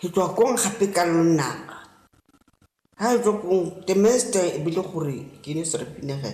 Re tswa kong gape ka lonaka? Ha re tswa kong, the master e bile gore ke ne Serafina ge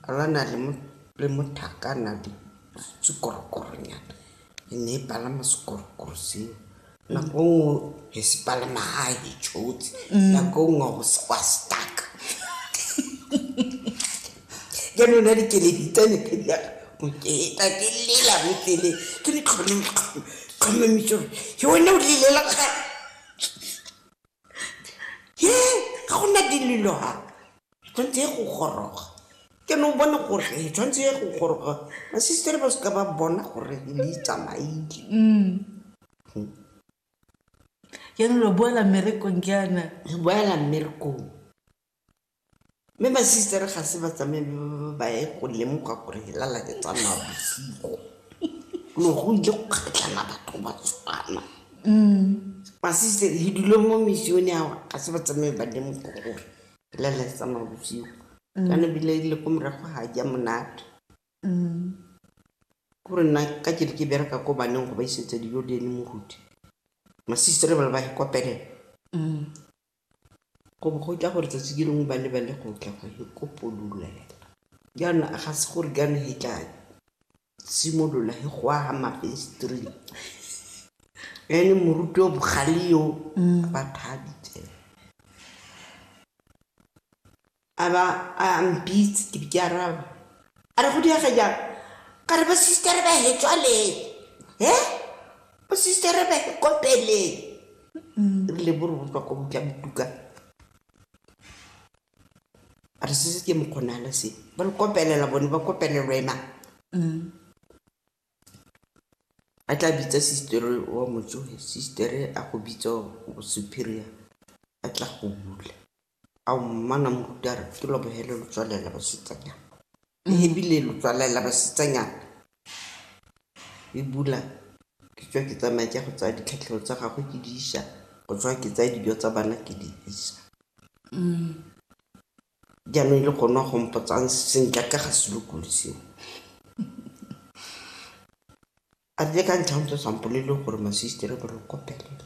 a lwana le mo le mothakana le sekorokoronyana e ne e palama sekorokoro seo nako nngwe he se palama ha e tshotse nako nngwe go se kwa stuck ya nona dikeledi tsa mekgedi ya boketa ke lela botlele ke le tlhomamiso gore ke one o lelela ga ye ga go na dilelo ga tshwanetse ye go goroga ke ne o bone gore e tshwanetse ye go goroga masistere ba seka ba bona gore le itsamaile ke ne lo boela mmerekong jaana boela mmerekong Mme masistere ga se ba tsamaye ba ye go lemoga gore lala ke tsa mabosigo. Lo go ile go kgatlhana batho ba tshwana. Masistere le dule mo misione ao ga se ba tsamaye ba lemoga gore lala ke tsa mabosigo. Kana ebile le ko morago ga ja monate. Kore nna ka ke re ke bereka ko baneng go ba isetsa dijo le ene moruti, masistere ba le ba ikopelela. Go bo go tla gore tsatsi le lengwe ba lebale go tla go e kopolola yana. Yana ga se gore kana he tla simolola he go aga mafenstring. Ene moruti yo bogale yo ba thabitse. a ba a mpitse ke be ke araba a re go diaga jang ka re bosister ba he tswale he bosister ba he kopele ebile bo re go tswa ko botla botuka a re sese ke mokgonala se ba le kopelela bone ba kopelelwa ena a tla bitsa sister wa motsoge sister a go bitsa superior a tla go bula ao mmana mokutare ke lobogele lo tswalela basetsanyana mm. ebile lo tswalela basetsanyana e bula ke tswa ke tsamaya ke go tsaya ditlhatlhego tsa gagwe ke di isa go tswa ke tsaya dijo tsa bana ke di isa mm. jaanong e le gone go mpotsang sentle ka ga selokolo seo a tle ka ntlha ntse sampolele gore masistere ba lo kopelela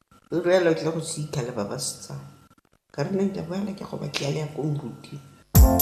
Ruri fela o tlile go sitha le ba ba setsana. Ka re nna ke a boela ke a go batlela le ya ko moruti.